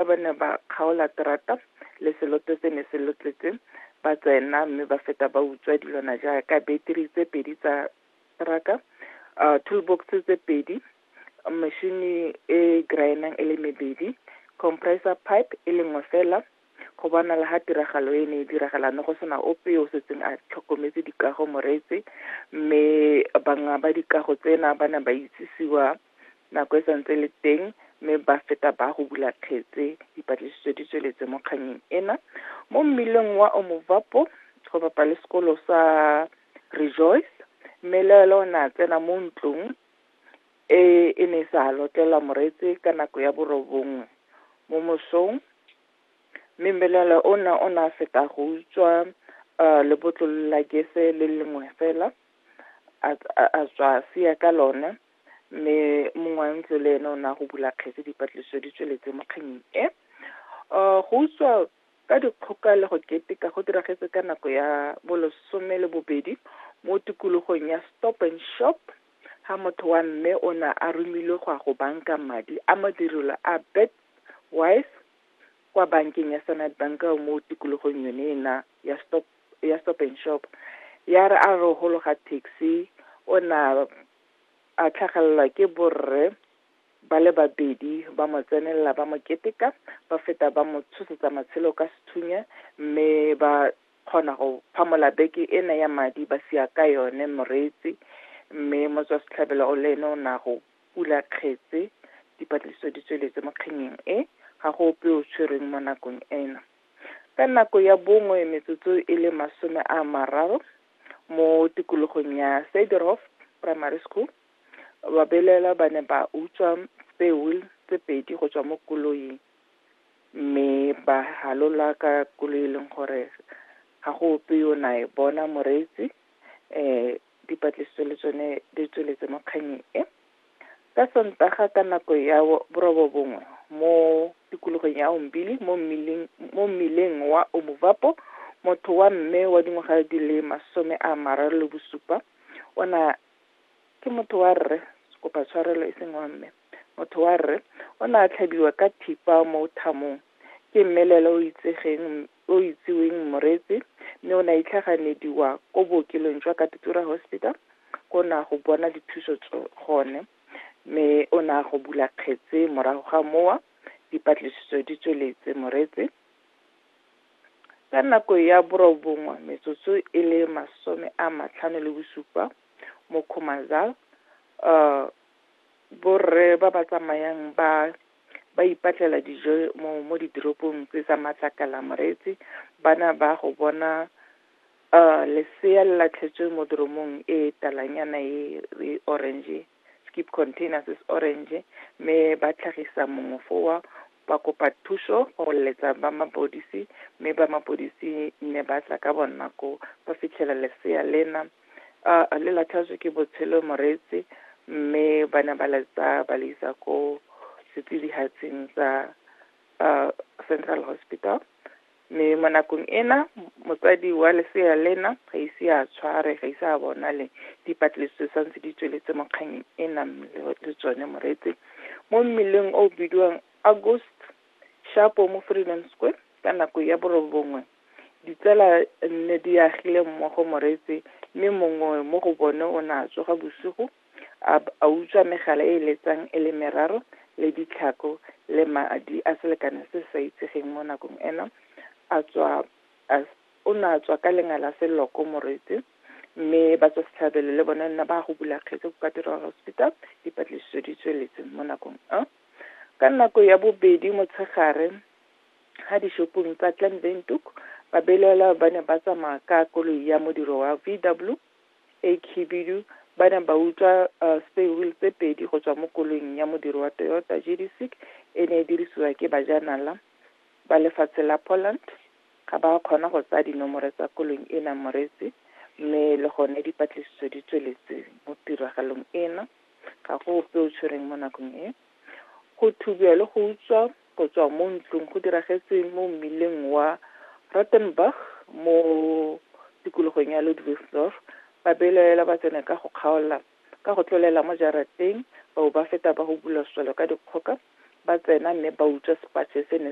Fa ba ne ba kgaola terata, leseloto se ne se lotletse, ba tsena mme ba feta ba utswa dilwana jaaka beteri tse pedi tsa teraka, uh, toolbox tse pedi, mešini e graenang e le mebedi, compressor pipe e le nngwe fela, go bonala ga tiragalo e ne e diragala ne go sena ope yo o setseng a tlhokometse dikago moretse mme banga ba dikago tsena ba ne ba itsisiwa nako e santse le teng mme ba feta ba go bula kgetse dipatlisiso di tsweletse mo kganyeng ena mo mmileng wa omovapo go bapa le sekolo sa rejoice mme le ela o ne a tsena mo ntlong e e ne sa lotlelwa moretse ka nako ya borobongwe mo mosong mme mmelele o ne o ne a feta go utswa um lebotlolo la gese le lengwe fela a tswa a siya ka lone mme mongwe wa ntlo le ene o ne a go bula kgetse dipatlisiso di tsweletse mo kganyeng e um go utswa ka dikgoka le go keteka go diragetse ka nako ya bolesome le bobedi mo tikologong ya stop and shop ga motho wa mme o ne a romilwe go ya go banka madi a madirelo a bet wise kwa bankeng ya standard bank mo tikologong yone ena ya stop ya stop and shop ya re a re gologa taxi o na a tlhagelelwa ke borre ba le babedi ba mo tsenelela ba mo keteka ba feta ba mo tshosetsa matshelo ka sethunya mme ba kgona go phamola beke ena ya madi ba sia ka yone moreetsi mme motswa setlhabelo o le ene o ne a go pula kgetse dipatlisiso di tsweletse mo kgenyeng e ga go ope o tshwerweng mo nakong ena ka nako ya bongwe metsotso e le masome a mararo mo tikologong ya Sederhof Primary School. Babelaelwa ba ne ba utswa peo tse pedi go tswa mo koloing mme ba halola ka koloi e leng gore ga go ope yo na e bona moreetsi um dipatlisiso le tsone di tsweletse mo kganyeng e Ka Sontaga ka nako ya borobobongwe mo tikologong ya Umbili mo mmileng mo mmileng wa Omuvapo, motho wa mme wa dingwaga di le masome a mararo le bosupa o na ke motho wa rre kopa tshwarelo e seng wa mme motho wa rre o ne a tlhabiwa ka thipa mo thamong ke mmelelo o itsegeng o itsiweng Mmoretsi mme o ne a itlhaganediwa ko bookelong jwa Katutura Hospital ko ne a go bona dithuso gone mme o ne a go bula kgetse morago ga mowa dipatlisiso di tsweletse Moretse ka nako ya borobongwe metsotso e le masome a matlhano le bosupa mo Khumazal borre ba ba tsamayang ba ba ipatlela dijo mo mo ditoropong tse tsa matlakala moreetsi bana ba go bona uh lesea le latlhetswe mo doromong e talanyana e e orange skip containers is orange mme ba tlhagisa mongwe fowa ba kopa thuso go letsa ba mapodisi mme ba mapodisi ne ba tla ka bonako ba fitlhela lesea lena A le latlhajwe ke botshelo moreetsi mme ba ne ba le tsaya ba le isa ko setsidihatsing sa Central Hospital mme mo nakong ena motsadi wa lesea lena ga ise a tshware ga ise a bonale dipatlisiso sa ntse di tsweletse mo kganyeng e nang le tsone moreetsi mo mmeleng o bidiwang August Shapo mo Freedom Square ka nako ya borobongwe ditsala nne di agile mmogo moretse, mme mongwe mo go bone o ne a tsoga bosigo, a b- a utswa megala e e letsang e le meraro, le ditlhako, le madi a selekano se se sa itsegeng mo nakong eno, a tswa, a s- o ne a tswa ka lenga la seloko moretse, mme ba tswa setlhabelo le bone nna ba ya go bula kgetse ko Cathedral Hospital, dipatlisiso di tsweletse mo nakong eo. Ka nako ya bobedi motshegare, ga dishopong tsa Clan Windhoek, babelaelwa ba ne ba tsamaya ka koloi ya modiro wa VW e khibidu ba ne ba utswa uh, spare wheel tse pedi go tswa mo koloing ya modiro wa Toyota GD6 e ne e dirisiwa ke bajanala ba lefatshe la Poland. Ga ba kgona go tsaya dinomore tsa koloing ena moretsi mme le gone dipatlisiso di tsweletse mo tiragalong ena. Ga go ope o tshwereng mo nakong e. Go thubiwa le go utswa Go tswa mo ntlong go diragetse mo mmileng wa Rottenburg mo tikologong ya Ludwigsdorf, ba belaela batseneka go kgaola ka go tlolela mo jarateng, bao ba feta ba hubulwa swelo ka dikgoka, ba tsena mme ba utswa sepatšhe se ne